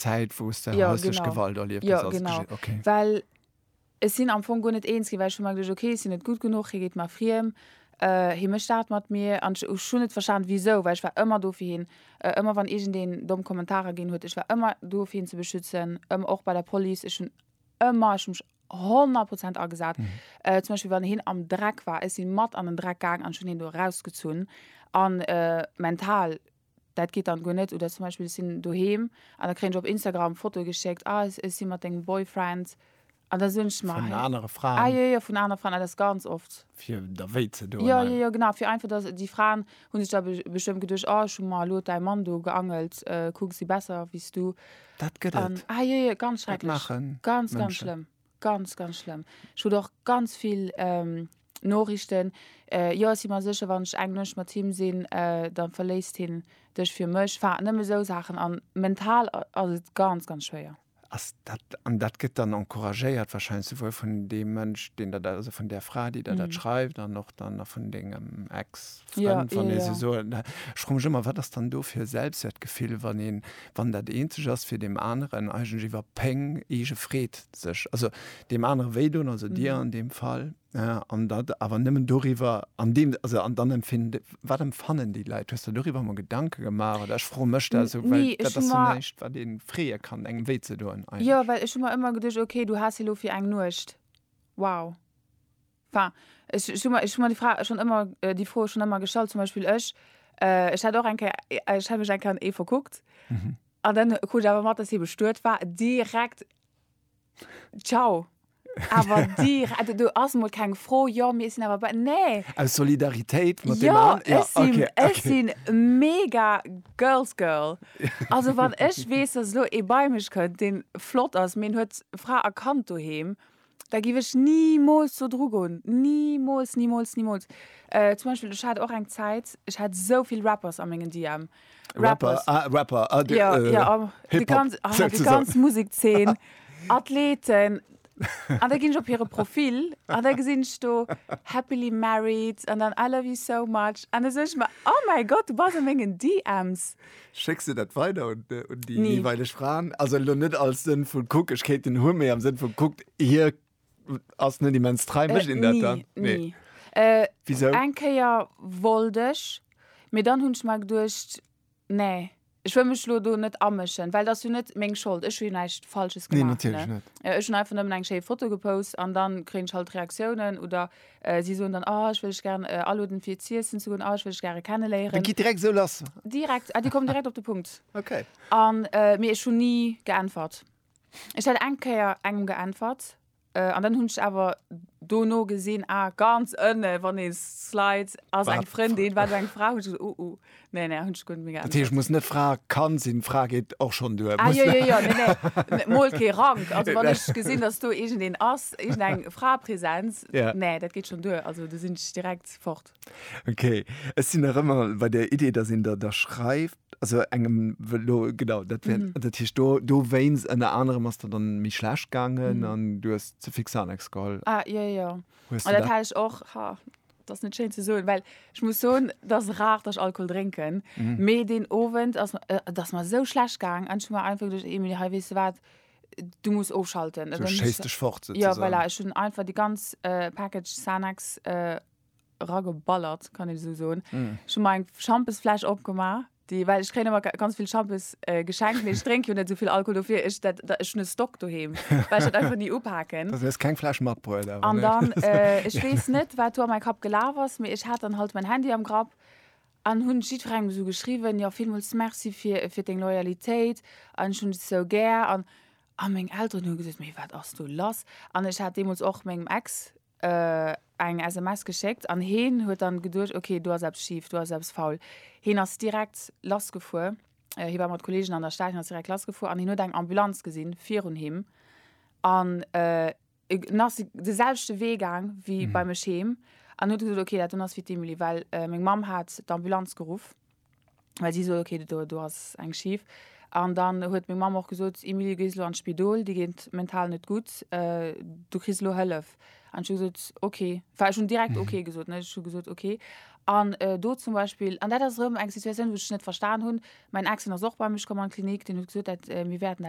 Zäit wou s de häuslech Gewalt erlieft hues als Jong? Jo genau, well ech sinn am Fong guer net eens ginn, well ech hu mer geduecht, ok ech sinn net gutt genuch, hie geet mer friem, hie mécht dat mat mir an ech hunn net verstanen wisou, well ech war ëmmer do fir hien, ëmmer wann iergendeen domm Kommentarer ginn huet, ech war ëmmer do fir hien ze beschützen, ëmmer och bei der Police, ech hunn ëmmer, ech hu mech 100 Prozent agesat. Zum Beispill wann hien am Dreck war, ech sinn mat an den Dreck gaang an ech hunn hien do erausgezunn a mental Dat geet dann guer net. Oder zum Beispill ech sinn doheem an da kréien ech op Instagram Fotoe geschéckt, ah ech si mat dengem Boyfriend an da soen ech mer, vun anere Fraen. ah jo jo vun anere Fraen, ah dat ass ganz oft. Fir der wéi ze doen. Jo jo jo genau, fir einfach dass déi Fraen hu sech da bestëmmt geduecht, oh ech hu mer elo däi Mann do geangelt, kuck ech si besser wéi s du. Dat gëtt et. Ah jo jo ganz schrecklech, ganz ganz schlëmm. Ganz, ganz schlëmm. Ech krut och ganz vill Noriichten, Jo, ech si mer sécher, wann ech eng Nuecht mat him sinn, da verléisst hien dech fir mech. Enfin, nëmme esou Saachen. A mental ass et ganz, ganz schwéier. Ass dat, an dat gëtt dann encouragéiert wahrscheinlech souwuel vun deem Mënsch, deen der dat, also vun där Fra, déi der dat schreift, an och dann nach vun dengem Ex-Frënd, wann ee sou soen. Ech froe mech ëmmer, Wat ass dann do fir e Selbstwäertgefill, wann een, wann dat eenzeg ass fir deem aneren eigentlech iwwer Péng, eege Freed sech, also deem anere wéidoen, also dir an deem Fall, an dat awer nëmmen doriwwer, an deem, also an dann empfinde, wat empfannen déi Leit? Hues de der doriwwer emol Gedanke gemaach oder? Ech froe mech dat esou, well dat ass dat éischt wat ee freeë kann, engem wéi ze doen eigentlech. Jo, well ech hu mer ëmmer geduecht, okay, du has hie lo fir eng Nuecht, wow. Enfin, ech, ech hu mer, ech hu mer déi Fra schon ëmmer, déi Fro schon ëmmer gestallt. Zum Beispill ech, äh, ech hat och eng Kéier, ech hat mech eng Kéier an ee verkuckt. An dann krut ech awer mat, dass hie bestuet war. Direkt, ciao! Awer direkt, also do ass emol keng Fro, jo, mee ech sinn awer bei, nee! Aus Solidaritéit mat deem Jo, an, ja, ech sinn, okay, ech okay. sinn mega Girls Girl. Also wann ech weess, dass elo ee bei mech kënnt, dee flott ass, mee en huet Fra a Kand doheem, Da giff ech nimools do dru goen. Nimools, nimools, nimools. Äh, zum Beispill, ech hat och eng Zäit, ech hat esou vill Rappers a mengen DM. Rapper, ah, Rapper, ah, de, Ja, äh, ja, am, de Hip-Hop, ganz, ah, de sozusagen. ganz Musekzeen, Athleten. An da ginn ech op hire Profil an da gesinn ech do happily married an dann I love you so much an da soen ech mer, oh mäi Gott, du bass a mengen DMs. Schécks du dat weider un, äh, un déi nee. weileg Fraen? Also lo net als Sënn vun kuck, ech kéint den hunn, mee am Sënn vun kuckt, hie ass net immens trei, äh, mécht een dat dann? Nee. nee. Äh, Wieso? Eng Kéier wollt ech, mee dann hunn ech mer geduecht, nee, ech wëll mech lo do net amëschen, well dat ass jo net meng Schold, ech hu jo näischt Falsches gemaach. Nee, natierlech net. Äh, ech hunn einfach nëmmen eng schéi Foto gepost an dann kréien ech halt Reaktiounen oder Si soen dann, Oh, ech wëll lech gären aloden, fir z'iessen ze goen. Oh, ech wëll lech gäre kenneléieren. Dat geet direkt esou lass? Direkt. Ah, déi kommen direkt op de Punkt. Okay. A, mee ech hunn ni geäntwert. Ech hat eng Kéier engem geäntwert, an dann hunn ech awer dono gesinn, Ah, ganz ënne, wann ee slide, ass eng Frëndin, war do eng Fra. Hunn ech gesot, Oh, oh. Nee, nee, hunn ech guer net méi Dat geäntwert. heescht, muss net Fra, kann sinn. Fra geet och schonn duer. Ah, Muss jo, jo, jo, nee, nee, ne, mol kee Rank. Also wann ech gesinn, datt do iergendeen ass, iergendeng Fraepräsenz, Ja. nee, dat geet schonn duer. Also do sinn ech direkt fort. Okay, ech sinn nach ëmmer bei der Idee, datt een der da schreift, also engem wë-, lo, genau, dat wär, dat heescht, do, dowéinst ënner anerem ass der dann méi schlecht gaangen an du hues ze fix Xanax geholl. Ah, jo, jo, jo. Hues Ah, du dat dat? hat ech och, ha. Dat ass net schéin ze soen, well ech muss soen, et ass rar, datt ech Alkohol drénken. Mee deen Owend ass, et ass mer esou schlecht gaang an ech hu mer einfach geduecht, Emil, hei, weess de wat, du muss ofschalten. Du schéiss dech fort souzesoan. Jo, voilà, ech hunn einfach déi ganz Package Xanax erageballert, kann een esou soen. Ech hu mer eng Schampesfläsch opgemaach, Déi, well ech kréien ëmmer ga ganz vill Shampoos äh, geschenkt, mee ech drénke jo net esou vill Alkohol, dofir ech dat, dat ech hun e Stock doheem, well ech dat einfach ni upaken. Also hues keng Fläsch matbruet awer, An ne? dann, äh, ech weess net, wat do a mäi Kapp gelaf ass, mee ech hat dann halt mäin Handy am Grapp an hunn jiddwerengem esou geschriwwen, jo, villmools Merci fir, fir deng Loyalitéit an ech hunn dech esou gär an, a meng Elteren hunn gesot, mee wat ass do lass? An ech hat deemools och mengem Ex eng SMS geschéckt an heen huet dann geduecht ok do ass eppes schief, do ass eppes faul. Heen ass direkt lass gefuer, hee war mat Kollegen an der Stad, heen ass direkt lass gefuer an heen huet eng Ambulanz gesinn virun him an en ass de selwechte Wee gaang wéi bei mech heem an huet gesot ok dat do ass fir d'Emily well meng Mamm hat d'Ambulanz geruff. well si sot, okay, do, do ass eng schif. An dann huet meng Mamm och gesot, Emilie, du gees elo an d'Spidol, dir geet mental net gutt, du kriss elo Hëllef. An ech hu gesot, okay. Enfin, ech hunn direkt okay gesot, ne, ech hu gesot, okay. An do zum Beispill, an dat ass erëm eng Situatioun, wou ech net verstan hunn, mäin Ex, deen ass och bei mech komm an d'Klinik, deen huet gesot, dat, mir wäerten dat.